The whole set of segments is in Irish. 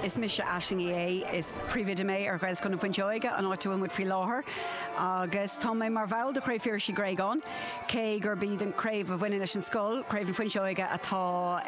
Is mise Aisling Uí Fhéich, is Príomhoide mé ar Ghaelscoil na Fuinseoige, an áit a bhfuil muid faoi láthair, agus tá mé mar bhall de Chraobh Phiarais Uí Ghréagáin, cé gurb iad an chraobh a bhaineann leis an scoil, Craobh na Fuinseoige, atá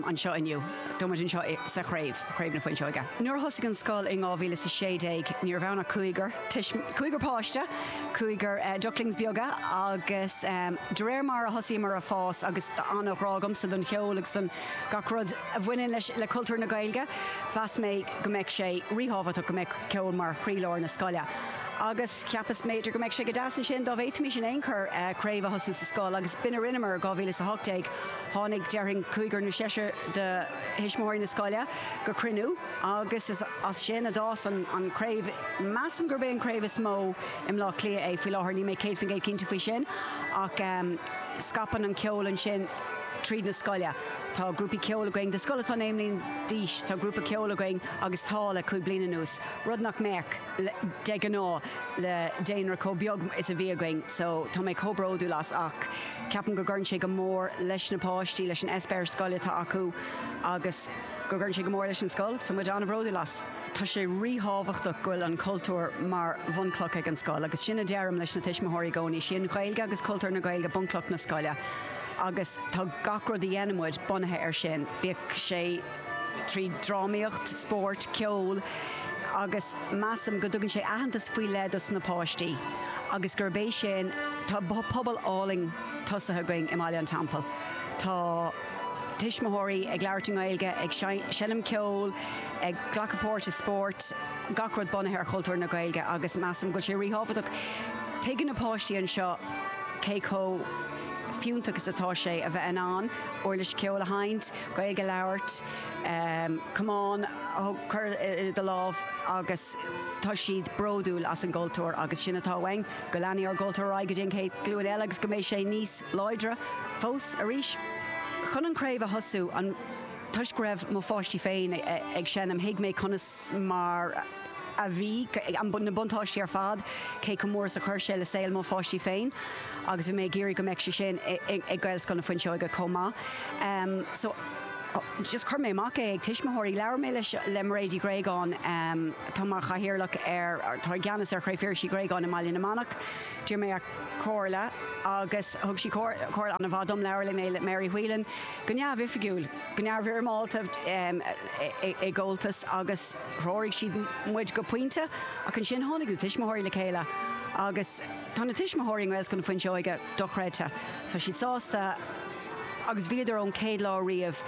anseo inniu. Tá muid anseo sa chraobh, Craobh na Fuinseoige. Nuair a thosaigh an scoil in 2016, ní raibh ann ach cúigear, cúigear páiste, cúigear ducklings beaga, agus de réir mar a thosaíomar a' fás, agus tá an-ghrá agamsa don cheol agus don. gach rud a bhaineann leis, le cultúr na Gaeilge, mheas mé go mbeadh sé ríthábhachtach go mbeadh ceol mar chroílár na scoile. Agus cheapas mb'fhéidir go mbeadh sé go deas ansin dá bhféadfaimis in aon chor craobh a thosú sa scoil agus b'in a rinneamar. 2018, tháinig, déarfainn, cúigear nó seisear de thuismitheoirí na scoile go cruinniú agus is as sin a d'fhás an an chraobh. Measaim gurb é an chraobh is mó i mBlá Cliath é faoi láthair, níl mé céad faoin gcéad cinnte faoi sin ach scaipeann an ceol ansin. tríd na scoile. Tá grúpaí ceoil againn. Do scoil atá naoi mbliana d'aois, tá grúpa ceoil againn agus tá le cúig bliana anuas, rud nach mbeadh, de ghnáth, le daonra chomh beag is a bhí againn. So, tá mé chomh bródúil as ach ceapaim go gcuireann sé go mór leis na páistí, leis an eispéireas scoile atá acu agus go gcuireann sé go mór leis an scoil. So, muid an-bhródúil as. Tá sé ríthábhachtach go bhfuil an cultúr mar bhunchloch ag an scoil agus sin a deirim leis na tuismitheoirí i gcónaí. Is í an Ghaeilge agus cultúr na Gaeilge bunchloch na scoile agus tá gach rud a dhéanann muid bunaithe air sin, bíodh sé trí drámaíocht, spórt, ceol, agus measaim go dtugann sé aitheantas faoi leith dos na páistí agus gurb é sin, tá pobal álainn tosaithe againn i mBaile an Teampaill. Tá. tuismitheoirí ag labhairt i nGaeilge, ag seinm ceoil, ag glacadh páirt i spórt, gach rud bunaithe ar chultúr na Gaeilge agus measaim go bhfuil sé ríthábhachtach. Tuigeann na páistí anseo cé chomh fiúntach is atá sé a bheith in ann uirlis cheoil a sheinnt, Gaeilge a labhairt, camán a chur i do lámh agus tá siad bródúil as an gcultúr agus sin atá uainn, go leanfaidh ár gcultúr ar aghaidh go dtí an chéad ghlúin eile agus go mbeidh sé níos láidre fós arís. Chun an craobh a thosú, an, toisc go raibh mo pháistí féin ag seinm, thuig mé conas mar a bhí, na buntáistí ar fad, cé chomh mór is a chuir sé le saol mo pháistí féin agus bhí mé ag iarraidh go mbeadh sé sin ag Gaelscoil na Fuinseoige chomh maith. So, just chuir mé amach é ag tuismitheoirí. Labhair mé le, le Mairéad Uí Ghréagáin, atá mar chathaoirleach ar, atá i gceannas ar Chraobh Phiarais Uí Ghréagáin i mBaile na Manach. D'iarr mé comhairle agus thug sí comhairle an-mhaith dom, labhair mé le Mary Whelan go neamhoifigiúil, go neamhfhoirmeálta i gComhaltas agus threoraigh siad muid go pointe ach ansin tháinig na tuismitheoirí le chéile agus tá na tuismitheoirí i nGaelscoil na Fuinseoige dochreidte, tá siad sásta. agus bhíodar ón chéad lá riamh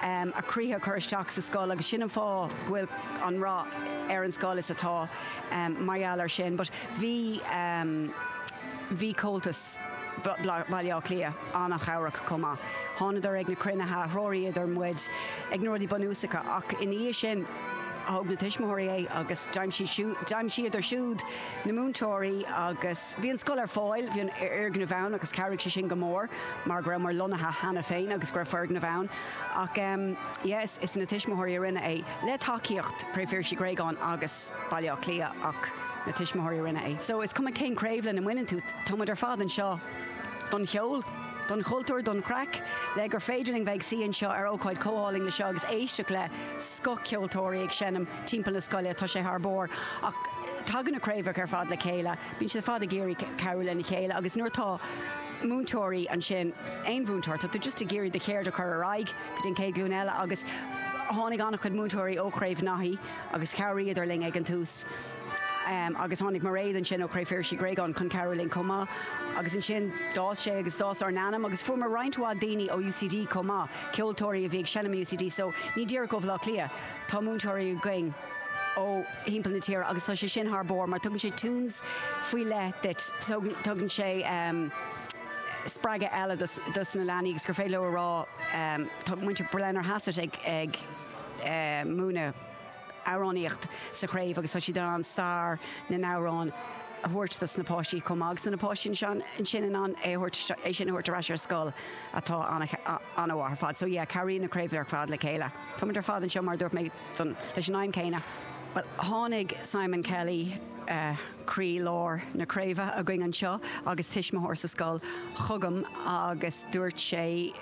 a gcroíthe a chur isteach sa scoil agus sin an fáth go bhfuil an rath ar an scoil is atá mar gheall ar sin but bhí bhí Comhaltas Bhaile Átha Cliath an-chabhrach chomh maith thánadar ag na cruinnithe a threoraíodar muid ag na rudaí bunúsacha ach ina dhiaidh sin thóg na tuismitheoirí é agus d'aimsigh d'aimsíodar siúd na múinteoirí agus Bhí an scoil ar fáil, bhí an fhoirgneamh ann agus chabhraigh sé sin go mór mar go rabhamar lonnaithe cheana féin agus go raibh foirgneamh ann. Ach yes, is na tuismitheoirí a rinne é, le tacaíocht Craobh Phiarais Uí Ghréagáin agus Baile Átha Cliath ach na tuismitheoirí a rinne é. So is cuma cén craobh lena mbaineann tú, tá muid ar fad anseo don cheol, don chultúr, don chraic, le gur féidir linn bheith ag suí anseo ar ócáid chomh álainn le seo agus éisteacht le scoth ceoltóirí ag seinm. timpeall na scoile, tá sé thar barr. Ach tagann na craobhacha ar fad le chéile, bíonn siad ar fad ag iarraidh cabhrú lena chéile agus nuair atá múinteoirí ansin, aon mhúinteoir, tá tú just ag iarraidh do cheird a chur ar aghaidh go dtí an chéad ghlúin eile agus tháinig an-chuid múinteoirí ó Chraobh Naithí agus chabhraíodar linn ag an tús agus tháinig Mairéad ansin ó Chraobh Phiarais Uí Ghréagáin chun cabhrú linn chomh maith agus ansin d'fhás sé agus d'fhás ár n-ainm agus fuaireamar roinnt mhaith daoine ó UCD chomh maith, ceoltóirí a bhí ag seinm i UCD so ní díreach ó Bhaile Átha Cliath. Tá múinteoirí againn ó thimpeall na tíre agus tá sé sin thar barr mar tugann sé tunes faoi leith duit, tugann sé spreagadh eile dos na leanaí agus gur féidir leo a rá tá muintir Blennerhassett ag múineadh amhránaíocht sa chraobh agus tá siad in ann stair na n-amhrán a thabhairt dos na páistí chomh maith agus tá na páistí ansin in ann é thabhairt, é sin a thabhairt ar ais ar scoil atá an-mhaith ar fad. So yeah, cabhraíonn na craoibhe ar fad le chéile. Táimid ar fad anseo, mar a dúirt mé, don, leis an aidhm céanna. Bhuel, tháinig Simon Kelly, eh, croí lár na craoibhe againn anseo agus tuismitheoir sa scoil, chugam agus dúirt sé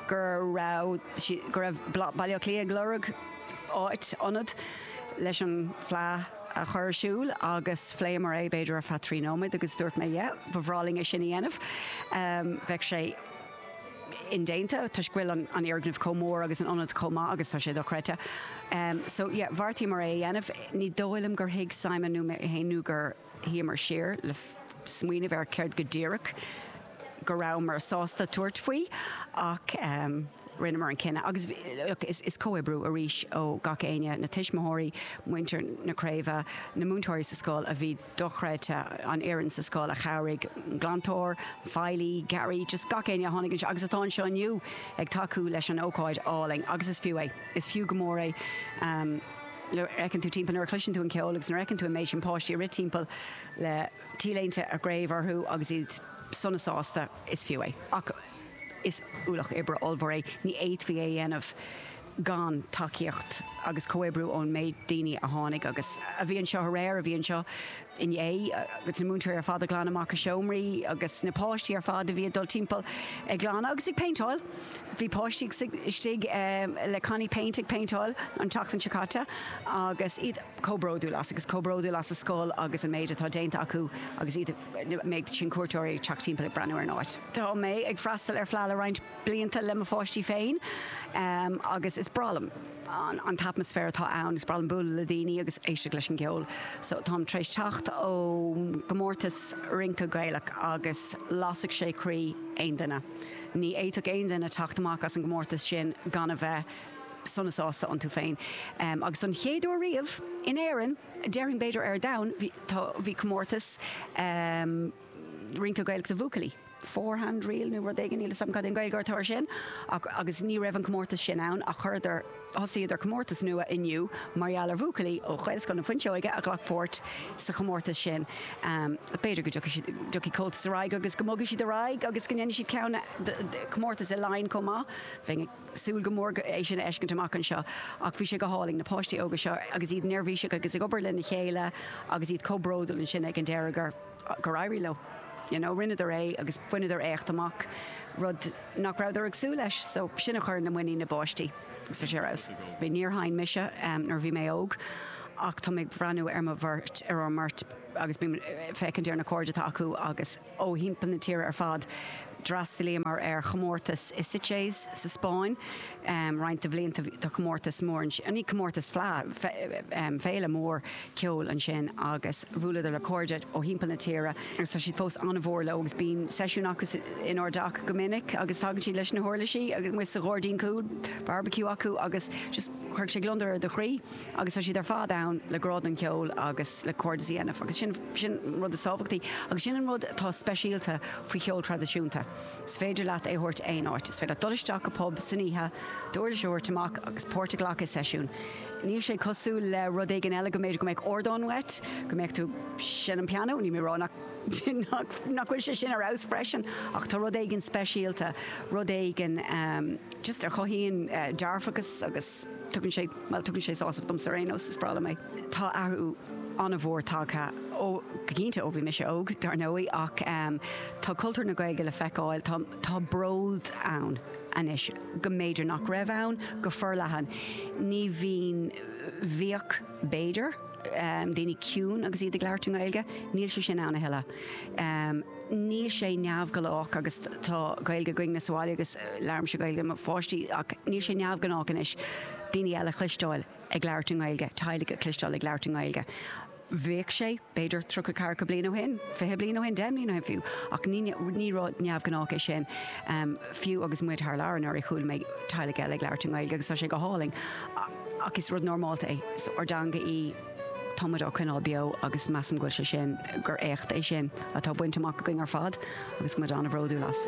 go raibh si, go raibh Bla, Baile Átha Cliath ag lorg áit, ionad, leis an Fleadh a chur ar siúl agus phléamar é b'fhéidir ar feadh trí nóiméad agus dúirt mé, yeah, ba bhreá linn é sin a dhéanamh. Em, bheadh sé. indéanta toisc go bhfuil an fhoirgneamh chomh mór agus an ionad chomh maith agus tá sé dochreidte so yeah bheartaíomar é a dhéanamh. Ní dóigh liom gur thuig Simon nó mé féin nó gur shuíomar siar le smaoineamh ar céard go díreach go rabhamar sásta tabhairt faoi ach ehm rinneamar an cinneadh agus look is is comhoibriú arís ó gach éinne, na tuismitheoirí, muintir na craobhe, na múinteoirí sa scoil a bhí. dochreidte an fhoireann sa scoil a chabhraigh, glantóir, feighlí, garraí, just gach éinne a tháinig anseo agus atá anseo inniu ag tacú leis an ócáid álainn agus is fiú é, is fiú go mór é. Nuair a fheiceann tú timpeall, nuair a chloiseann tú an ceol agus nuair a fheiceann tú an méid sin páistí ag rith timpeall le t-léinte a gcraobhe orthu agus iad sona sásta, is fiú é. Ach is ualach oibre ollmhór é, ní fhéadfaí é a dhéanamh. gan tacaíocht agus comhoibriú ón méid daoine a tháinig agus a bhí anseo aréir, a bhí anseo inné, agus na múinteoirí ar fad ag glanadh amach a seomraí agus na páistí ar fad a bhí ag dul timpeall ag glanadh agus ag péinteáil. Bhí páistí istigh le cannaí péint ag péinteáil an tseachtain seo caite agus iad chomh bródúil as agus chomh bródúil as a scoil agus an méid atá déanta acu agus iad, na méid sin cuairteoirí ag teacht timpeall ag breathnú ar an áit. Tá mé ag freastal ar Fleadh le roinnt. blianta le mo pháistí féin agus is breá liom an t-atmaisféar atá ann, is breá liom bualadh le daoine agus éisteacht leis an gceol. So táim tar éis teacht ó gcomórtas rince Gaelach agus lasfadh sé croí aon duine. Ní fhéadfadh aon duine teacht amach as an gcomórtas sin gan a bheith sona sásta iontu féin. Agus don chéad uair riamh, in Éirinn, déarfainn b'fhéidir ar domhan, bhí comórtas rince Gaelach do bhuachaillí. four-hand reel nó rud éigin, níl 'fhios a'm cad é an Gaeilge air sin, ach, agus ní raibh an comórtas sin ann ach chuireadar, thosaíodar comórtas nua inniu mar gheall ar bhuachaillí ó Ghaelscoil na Fuinseoige a ghlac páirt sa chomórtas sin. B'fhéidir go dtiocfaidh siad, dtiocfaidh Comhaltas ar aghaidh agus go mbogfaidh siad ar aghaidh agus go ndéanfaidh siad ceann, comórtas i Laighin chomh maith, bheinn ag súil go mór é sin a fheiscint amach anseo ach bhí sé go hálainn, na páistí óga seo agus iad neirbhíseach agus ag obair lena chéile agus iad chomh bródúil ansin ag an deireadh gur. gur éirigh leo. You know, rinneadar é agus bhaineadar éacht amach, rud nach rabhadar ag súil leis. So, sin, cuireann le muinín na bpáistí agus tá sé ar fheabhas. Níor sheinn mise nuair a bhí mé óg ach tá mé ag breathnú ar mo bheirt, ar ár mbeirt agus bím ag féachaint ar na cairde atá acu agus ó thimpeall na tíre ar fad. D'fhreastalaíomar ar chomórtas i Sitges sa Spáinn roinnt de bhlianta ó shin, comórtas mór ansin, ní comórtas, fleadh, féile mhór ceoil ansin agus bhuaileadar le cairde ó thimpeall na tíre agus tá siad fós an-mhór leo agus bíonn seisiún acu inár dteach go minic agus tagann siad leis na huirlisí amuigh sa gháirdín cúil, barbaiciú acu agus just chuirfeadh sé gliondar ar do chroí. agus tá siad ar fad ann le grá don cheol agus le cairdeas a dhéanamh agus sin an rud is tábhachtaí agus sin an rud atá speisialta faoi cheol traidisiúnta. Is féidir leat é thabhairt aon áit, is féidir dul isteach i bpub san oíche, d'uirlis a thabhairt amach agus páirt a ghlacadh i seisiún. Níl sé cosúil le rud éigin eile go mb'fhéidir go mbeadh ardán uait, go mbeadh tú seinm pianó, níl mé rá nach nach bhfuil sé sin ar fheabhas freisin ach tá rud éigin speisialta, rud éigin just a chothaíonn dearfachas agus. Tugann sé, bhuel, tugann sé sásamh domsa ar aon nós, is breá liom é. Tá athrú an-mhór tagtha, ó, go cinnte ó bhí mise óg, dar ndóigh, ach ehm tá cultúr na Gaeilge le feiceáil, tá, tá bród ann anois go mb'fhéidir nach raibh ann go forleathan. Ní bhíonn, bhíodh b'fhéidir, ehm daoine ciúin agus iad ag labhairt i nGaeilge, níl sé sin ann a thuilleadh. Ehm. níl sé neamhghnách agus tá Gaeilge againn sa bhaile agus labhraímse Gaeilge le mo pháistí ach níl sé neamhghnách anois daoine eile a chloisteáil ag labhairt i nGaeilge, teaghlaigh a chloisteáil ag labhairt i nGaeilge. Bhíodh sé, b'fhéidir, tríocha ceathracha bliain ó shin, fiche bliain ó shin, deich mbliana ó shin fiú, ach ní, ní rud neamhghnách é sin. Fiú agus muid thar lear anuraidh chuala mé teaghlaigh eile ag labhairt i nGaeilge agus tá sé go hálainn ach is rud normálta é, is ár dteanga í. Tá muid á coinneáil beo agus measaim go bhfuil sé sin, gur éacht é sin atá bainte amach againn ar fad agus muid an-bhródúil as.